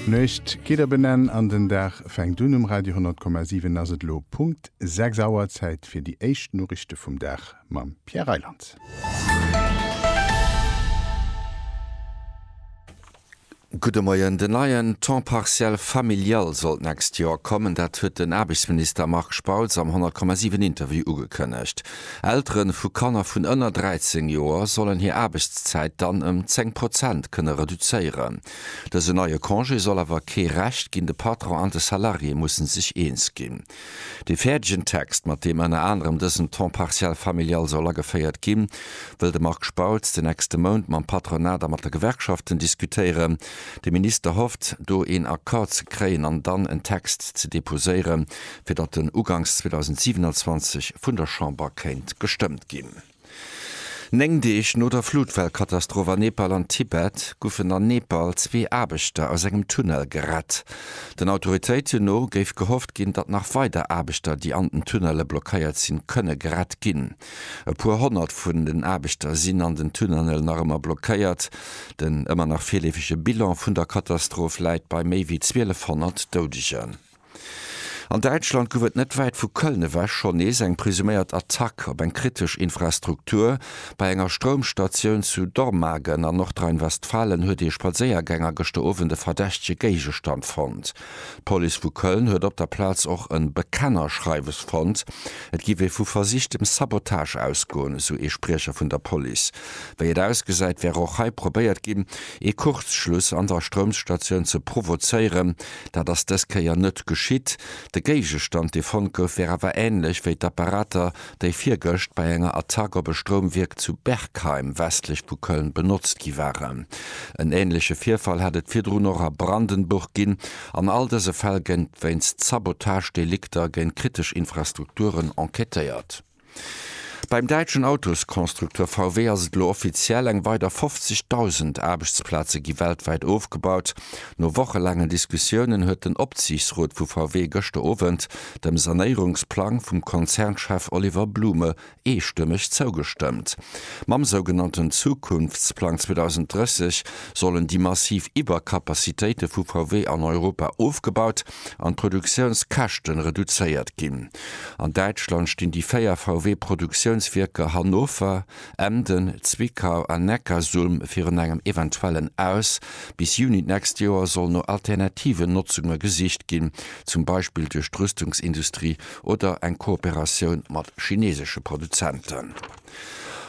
D'Nuecht geet op en Enn an den Dag fänkt un. Um Radio 100,7 ass et elo Punkt 6 Auer. Zäit fir déi éischt Noriichte vum Dag mam Pierre Reyland. Gudde Moien. Den neien Temps partiel familial soll d'nächst Joer kommen. Dat huet den Aarbechtsminister Marc Spautz am 100,7 Interview ugekënnegt. Eltere vu Kanner vun ënner 13 Joer sollen hir Aarbechtszäit dann ëm 10 Prozent kënne reduzéieren. Dësen neie Congé soll awer kee Recht ginn, de Patron an de Salarié musse sech eens ginn. Dee fäerdegen Text, mat deem ënner anerem dësen Temps partiel familial soll ageféiert ginn, wëll de Marc Spautz den nächste Mount mam Patronat a mat de Gewerkschaften diskutéieren. De Minister hofft, do een Accord ze kréien an dann en Text ze deposéieren, fir datt en uganks 2027 vun der Chamber kéint gestëmmt ginn. Néng Deeg no der Flutwell-Katastroph a Nepal an Tibet goufen an Nepal zwee Aarbechter aus engem Tunnel gerett. Den Autoritéiten no géif gehofft ginn, datt nach weider Aarbechter, déi an den Tunnele blockéiert sinn, kënne gerett ginn. E puer Honnert vun den Aarbechter sinn an den Tunnenel nach ëmmer blockéiert. Den ëmmer nach virleefege Bilan vun der Katastroph läit bei méi wéi 1200 Doudegen. An Däitschland gouf et net wäit vu Köln ewech schonn nees eng presuméiert Attack op eng kritesch Infrastruktur. Bei enger Stroumstatioun zu Dormagen an Nordrhein-Westfalen huet ee Spadséiergänger gëschter Owend e verdächtege Géigestand fonnt. D'Police vu Köln huet op der Plaz och e Bekennerschreiwes fonnt. Et géif ee vu versichtem Sabotage ausgoen, esou ee Spriecher vun der Police. Wéi et ausgesäit, wär och hei probéiert ginn, ee Kurzschluss an der Stroumstatioun ze provozéieren. Dat ass dës Kéier net geschitt. De Géigestand, dee fonnt gouf, wär awer änlech wéi d'Apparater, déi virgëscht bei enger Attack op e Stroumwierk zu Bergheim, westlech vu Köln, benotzt gi waren. En änleche Virfall hätt et virdrun och a Brandenburg ginn. An all dëse Fäll géing wéinst Sabotagedelikter géint kritesch Infrastrukturen enquêtéiert. Beim däitschen Autosconstructeur VW ass et elo offiziell, Eng weider 50.000 Aarbechtsplaze gi weltwäit ofgebaut. No wochelaangen Diskussiounen huet den Opsiichtsrot vu VW gëschter Owend dem Sanéierungsplang vum Konzernchef Oliver Blume eestëmmeg zougestëmmt. Mam sougenannten Zukunftsplang 2030 sollen déi massiv Iwwercapacitéite vu VW an Europa ofgebaut an d'Produktiounskäschte reduzéiert ginn. An Däitschland stinn déi véier VW-Produktiounswierker Hannover, Emden, Zwickau an Neckarsulm virun engem eventuellen Aus. Bis Juni d'nächst Joer soll no alternativen Notzunge gesicht ginn, zum Beispill duerch d'Rüstungsindustrie oder eng Kooperatioun mat chinesesche Produzenten.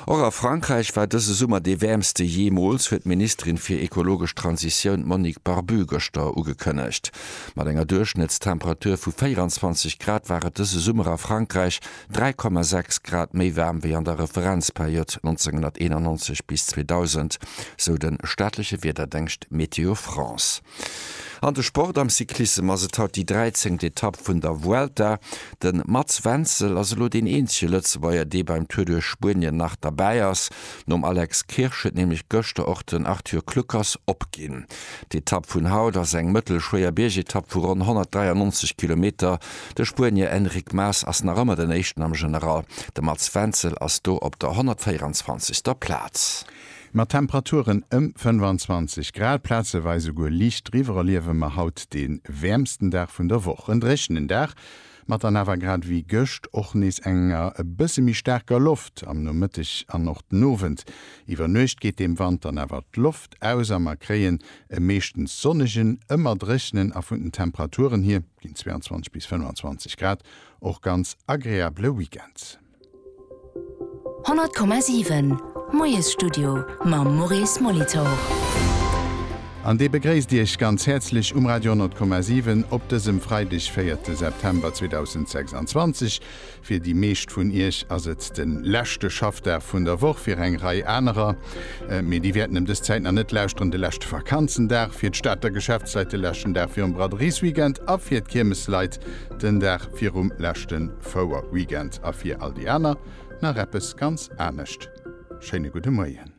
Och a Frankräich war dëse Summer dee wäermste jeemools, huet d'Ministerin fir ekologesch Transitioun Monique Barbu gëschter ugekënnegt. Mat enger Duerchschnëttstemperatur vu 24 Grad war et dëse Summer a Frankräich 3,6 Grad méi waarm wéi an der Referenzperiod 1991 bis 2000, sou de staatleche Wiederdéngscht Météo France. An de Sport, Am Cyclissem ass et haut déi 13. Etapp vun der Vuelta. De Mats Wenzel ass elo deen eenzege Lëtzebuerger, dee beim Tour duerch Spuenien nach derbäi ass. Nom Alex Kirsch huet nämlech gëschter och den Arthur Kluckers opginn. D'Etapp vun haut ass eng mëttelschwéier Biergetapp vu ronn 193 Kilometer. De Spuenier Enric Mas ass nach ëmmer den Éischten am General. De Mats Wenzel ass do op der 124. Plaz. Mat Temperaturen ëm 25 Grad, plazeweis esouguer liicht driwwer, erliewe mer haut dee wäermsten Dag vun der Woch. En dréchenen Dag mat dann awer grad ewéi gëscht och nees enger e bësse méi staarker Loft am Nomëtteg an och den Owend. Iwwer Nuecht geet dem Wand dann awer d'Loft aus a mer kréien e meeschtens sonnegen, ëmmer dréchenen a vun den Temperaturen hier, ginn 22 bis 25 Grad, och ganz agreabele Weekend. 100,7, Moiesstudio mam Maurice Molitor. An dee begréisst Iech ganz häerzlech um Radio 100,7 op dësem Freideg, 4 September 2026. Fir déi meescht vun Iech ass et de leschte Schaffdag vun der Woch, fir eng Rei anerer, mee déi wäerten ëm dës Zäit nach net lauschteren, de leschte Vakanzendag, fir d'Stater Geschäftsleit de leschten Dag virum Braderies-Weekend a fir d'Kiermesleit Den Dag virum leschte Fouerweekend a fir all déi aner nach eppes ganz anescht. Schéine gudde Moien.